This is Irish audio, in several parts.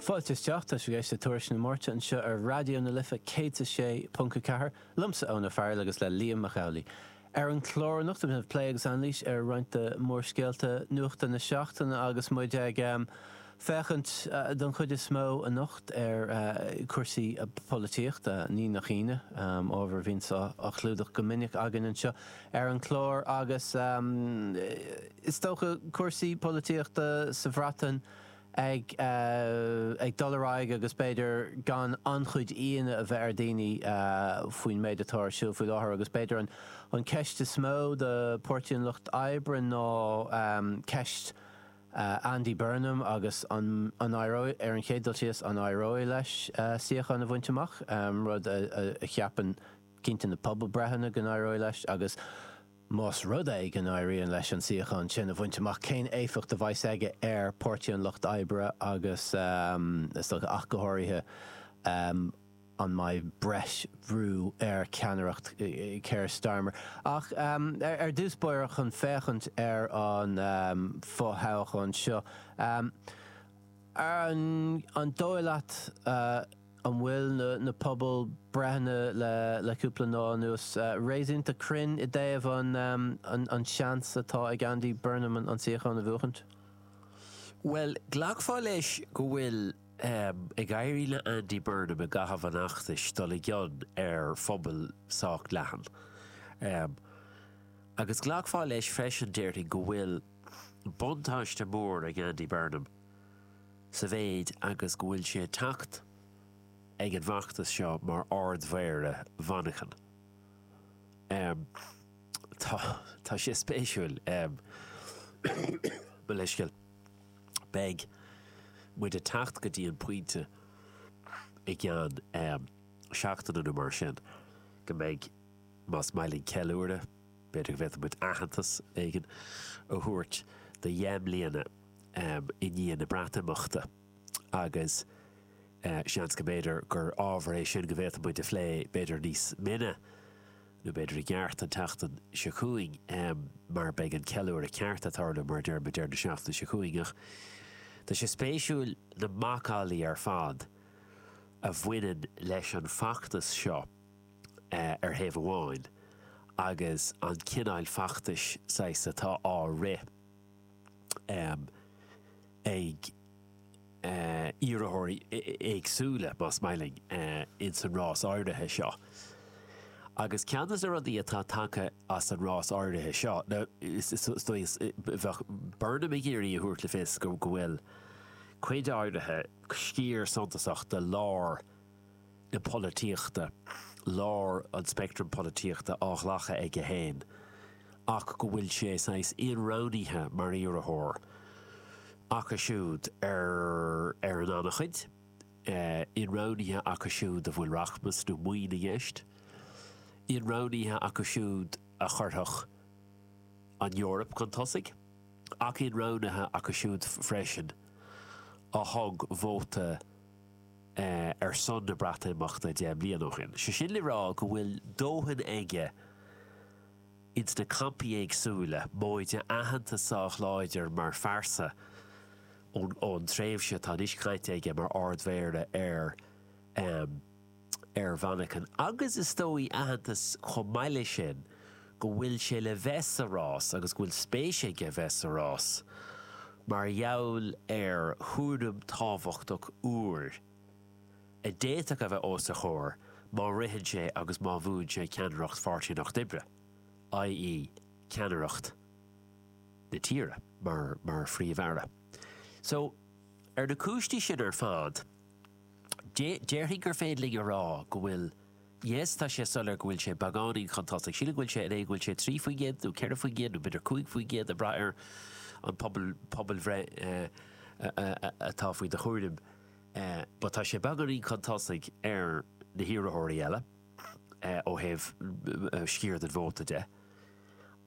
Fáilte isteach, tá sibh ag éisteacht le Tuairisc na Máirte anseo ar Raidió na Life 106.4, liomsa Eoin Ó Fearghail agus le Liam Mac Amhlaigh. Ar an chlár anocht beidh muid ag plé agus anailís ar roinnt de mhórscéalta nuachta na seachtaine agus muid ag féachaint don chuid is mó anocht ar chúrsaí polaitíochta, ní nach ionadh, ábhar a bhíonns á chlúdach go minic againn anseo ar an chlár agus Is dócha cúrsaí polaitíochta sa Bhreatain ag dul ar aghaidh agus b'fhéidir gan an-chuid ionadh a bheith ar dhaoine faoin méid atá ar siúl faoi láthair agus b'fhéidir an ceist is mó do Pháirtí an Lucht Oibre ná ceist Andy Burnham agus an éireoidh, ar an chéad dul síos, an éireoidh leis suíochán a bhaint amach, rud a cheapann cinnte na pobalbhreitheanna go n-éireoidh leis agus. Más rud é go n-éiríonn leis an suíochán sin a bhaint amach, cén éifeacht a bheas aige ar Páirtí an Lucht Oibre agus, is dócha, ach go háirithe, an mbeidh breis bhrú ar cheannaireacht Keir Starmer? Ach ar dtús báire, chun féachaint ar an fo-thoghchán seo, an dóigh leat, An bhfuil na pobalbhreitheanna le cúpla lá anuas réasúnta cruinn i dtaobh an seans atá ag Andy Burnham an suíochán a bhuachaint? Bhuel, ghlacfá leis go bhfuil ag éirí le Andy Burnham i gcaitheamh an fheachtais dul i gcion ar phobal sách leathan. Agus ghlacfá leis freisin, déarfainn, go bhfuil buntáiste mór ag Andy Burnham. sa mhéid agus go bhfuil sé ag teacht ag an bhfeachtas seo mar Ard-Mhéara Mhanchain. Tá, tá sé spéisiúil. Mo leithscéal. Beidh muid ag teacht go dtí an pointe i gceann seachtaine nó mar sin go mbeidh, más maith linn ceiliúradh, b'fhéidir go bhféadfadh muid aitheantas éigin a thabhairt do dheich mbliana i ndiaidh na Breatimeachta agus seans go mb'fhéidir gur ábhar é sin go bhféadfadh muid a phlé b'fhéidir níos mine nó b'fhéidir i gceart an tseachtain seo chugainn mar beidh an ceiliúradh ceart ag tarlú mar a deir muid an tseachtain seo chugainn ach tá sé spéisiúil na macallaí ar fad a bhaineann leis an bhfeachtas seo ar thaobh amháin agus an cineál feachtais saghas atá á rith. ag iarrthóirí éagsúla, más maith linn, ins an rás áirithe seo. Agus ceann des na rudaí atá tagtha as an rás áirithe seo, nó is dóigh, bheadh Burnham ag iarraidh a thabhairt le fios go bhfuil cuid áirithe, sciar suntasach de lár, na polaitíochta, lár an speictrim polaitíochta, á ghlacadh aige féin ach go bhfuil sé saghas inroghnaithe mar iarrthóir acu siúd ar ar an an-chuid, inroghnaithe acu siúd a bhfuil rachmas nó maoin i gceist, inroghnaithe acu siúd a chuirfeadh an Eoraip chun tosaigh ach inroghnaithe acu siúd freisin a thug vóta ar son na Breatimeachta deich mbliana ó shin. Sé sin le rá go bhfuil dóthain aige ins na campaí éagsúile, móide aitheantas sách láidir mar phearsa ón tréimhse atá anois caite aige mar Ard-Mhéara ar ar Mhanchain agus is dóigh aitheantas chomh maith leis sin go bhfuil sé le bheith sa rás agus go bhfuil spéis aige bheith sa rás mar gheall ar chúram tábhachtach úr a d'fhéadfadh a bheith os a chomhair má ritheann sé agus má bhuann sé ceannaireacht Pháirtí an Lucht Oibre, i.e. ceannaireacht na tíre mar Phríomh-Aire. So, ar na cúinsí sin ar fad, Déarfainn gur féidir linn a rá go bhfuil, yes, tá sé soiléir go bhfuil sé beagáinín chun tosaigh. Sílim go bhfuil sé in aon, go bhfuil sé trí faoin gcéad nó ceithre faoin gcéad nó b'fhéidir cúig faoin gcéad ag braith ar an pobal, pobalbhreith atá faoi do chúram but tá sé beagáinín chun tosaigh ar na hiarrthóirí eile ó thaobh sciar den vóta de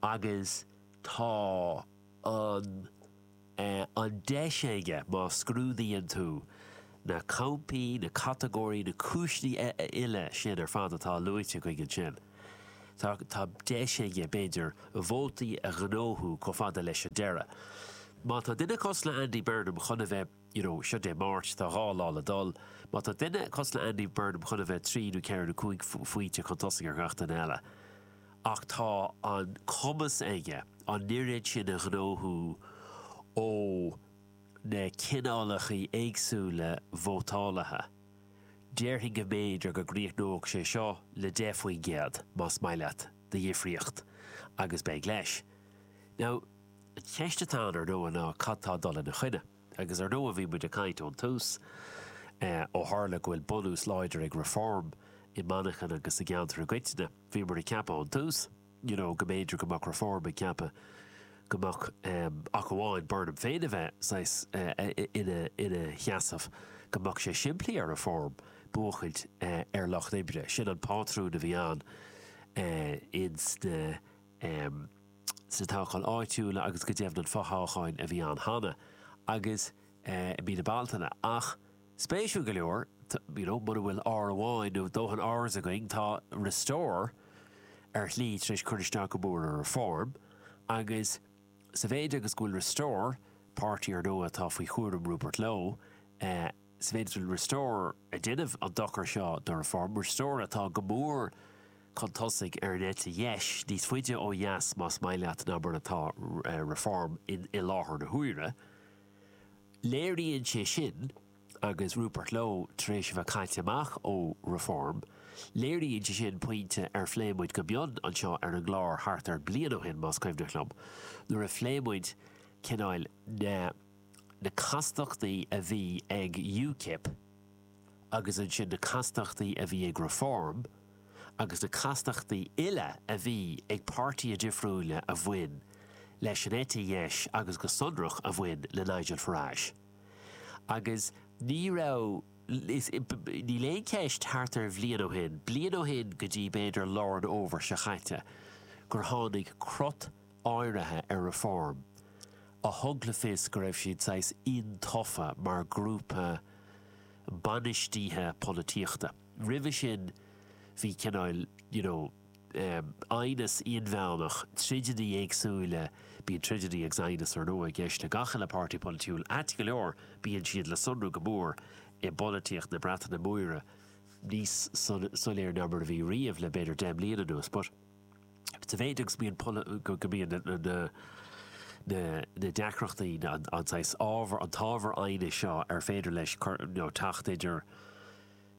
agus tá an, an deis aige, má scrúdaíonn tú na campaí, na catagóirí, na cúiseanna uile sin ar fad atá luaite againn ansin, tá, tá deis aige, b'fhéidir, vótaí a ghnóthú chomh fada leis an deireadh. Má tá duine cosúil le Andy Burnham chun a bheith, you know, seo Dé Máirt, tá dhá lá le dul, má tá duine cosúil le Andy Burnham chun a bheith trí nó ceithre nó cúig pointe chun tosaigh ar gach duine eile, ach tá an cumas aige an oiread sin a ghnóthú ó na cineálacha éagsúla vótálaithe, déarfainn go mb'fhéidir go gcríochnódh sé seo le deich faoin gcéad, más maith leat, de dhifríocht, agus beidh leis. Now, an cheist atá ann, ar ndóigh, ná cad tá ag dul ina choinne? Agus ar ndóigh, bhí muid ag caint ón tús, ó tharla go bhfuil bunús láidir ag Reform i Manchain agus sa gceantar i gcoitinne, Bhíomar ag ceapadh ón tús you know go mb'fhéidir go mbeadh Reform ag ceapadh go mbeadh em ach amháin Burnham féin a bheith saghas eh ina ina sheasamh go mbeadh sé simplí ar Reform buachtaint eh ar an Lucht Oibre. Sin an pátrún a bhí ann eh ins na em sna toghcháin áitiúla agus go deimhin an fothoghchán a bhí ann cheana agus eh i mí na Bealtaine ach Spéisiúil go leor, you know, muna bhfuil R amháin nó dóthain Rs againn, tá Restore ar shlí tar éis cur isteach go mór ar Reform agus sa mhéid agus go bhfuil Restore, páirtí ar ndóigh atá faoi chúraim Rupert Lowe, eh, sa mhéid is go bhfuil Restore ag déanamh an dochar seo do Reform, Restore atá go mór chun tosaigh ar an eite dheis, níos faide ó dheas más maith leat ná mar atá, eh, Reform in, i láthair na huaire. Léiríonn sé sin, agus Rupert Lowe tar éis a bheith caite amach ó Reform, léiríonn sé sin pointe ar phléigh muid go mion anseo ar an gclár thart ar bliain ó shin, más cuimhneach liom, nuair a phléigh muid cineáil na na castachtaí a bhí ag UKIP, agus ansin na castachtaí a bhí ag Reform agus na castachtaí uile a bhí ag páirtithe difriúila a bhain leis an eite dheis agus go sonrach a bhain le Nigel Farage. Agus ní raibh, níl aon cheist thart ar bhliain ó shin, bliain ó shin go dtí b'fhéidir lár an fhómhair seo chaite, gur tháinig crot áirithe ar Reform a thug le fios go raibh siad saghas iontaofa mar ghrúpa bainistithe polaitíochta. Roimhe sin bhí cineál, you know, eh, aighneas inmheánach, troideannaí éagsúla, bíonn troideannaí agus aighneas ar ndóigh i gceist le gach uile páirtí polaitiúil, ait go leor bíonn siad le sonrú go mór i bpolaitíocht na Breataine Móire, níos soiléire ná mar a bhí riamh le b'fhéidir deich mbliana anuas, but. sa mhéid agus go mbíonn na deacrachtaí, an saghas ábhair, an t-ábhar aighnis seo ar féidir leis teacht idir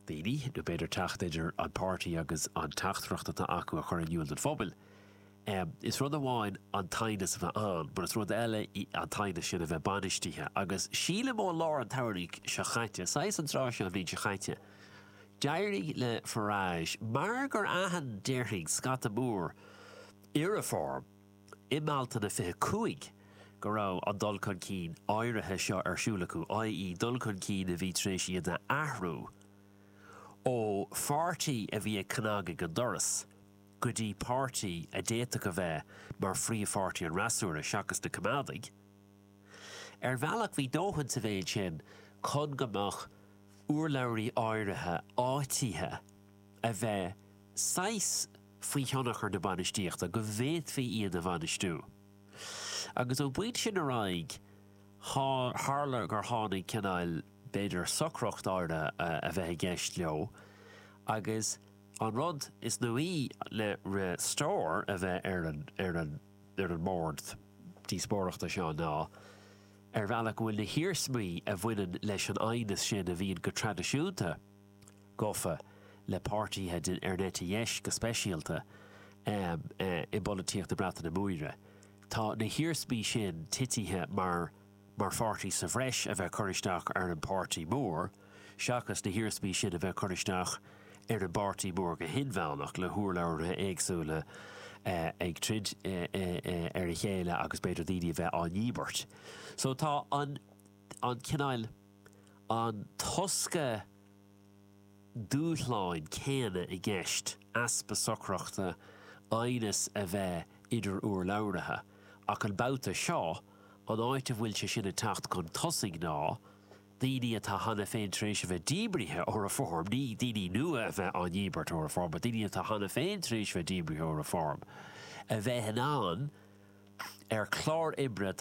daoine, nó b'fhéidir teacht idir an páirtí agus an teachtaireacht atá acu le cur in iúl don phobal. Is rud amháin an t-aighneas a bheith ann, mar is rud eile an t-aighneas sin a bheith bainistithe, agus sílim ó lár an tsamhraidh seo chaite, saghas an tráth seo an bhliain seo chaite, D'éirigh le Farage mar gur aithin, déarfainn, scata mór i Reform i mBealtaine 25 go raibh an dul chun cinn áirithe seo ar siúl acu, i.e. dul chun cinn a bhí tar éis iad a athrú ó pháirtí a bhí ag cnagadh an doras go dtí páirtí a d'fhéadfadh a bheith mar phríomhpháirtí an fhreasúra, seachas na Coimeádaigh. Ar bhealach bhí dóthain sa mhéid sin chun go mbeadh urlabhraithe áirithe áitithe a bheith saghas faoi thionchar na bainistíochta, go bhféadfaí iad a bhainistiú. Agus ón bpointe sin ar aghaidh tharla gur tháinig cineál, b'fhéidir, socracht áirithe a bheith i gceist leo agus an rud is nuaí le Restore a bheith ar an ar an mbord díospóireachta seo ná ar bhealach go bhfuil na hiarsmaí a bhaineann leis an aighneas sin a bhíonn go traidisiúnta gofa le páirtithe den eite dheis go speisialta i bpolaitíocht na Breataine Móire, tá na hiarsmaí sin titithe mar mar pháirtí sa bhreis a bheith curtha isteach ar an bpáirtí mór seachas na hiarsmaí sin a bheith curtha isteach ar an bpáirtí mór go hinmheánach le hurlabhraithe éagsúla ag troid ar a chéile agus b'fhéidir daoine a bheith á ndíbirt. So tá an cineál an tosca, dúshlán céanna i gceist, easpa socrachta, aighneas a bheith idir urlabhraithe, ach an babhta seo, an áit a bhfuil sé sin ag teacht chun tosaigh ná daoine atá cheana féin tar éis a bheith díbrithe ó Reform, ní daoine nua a bheith á ndíbirt ó Reform, but daoine atá cheana féin tar éis a bheith díbrithe ó Reform, a bheith in ann, ar chlár oibre atá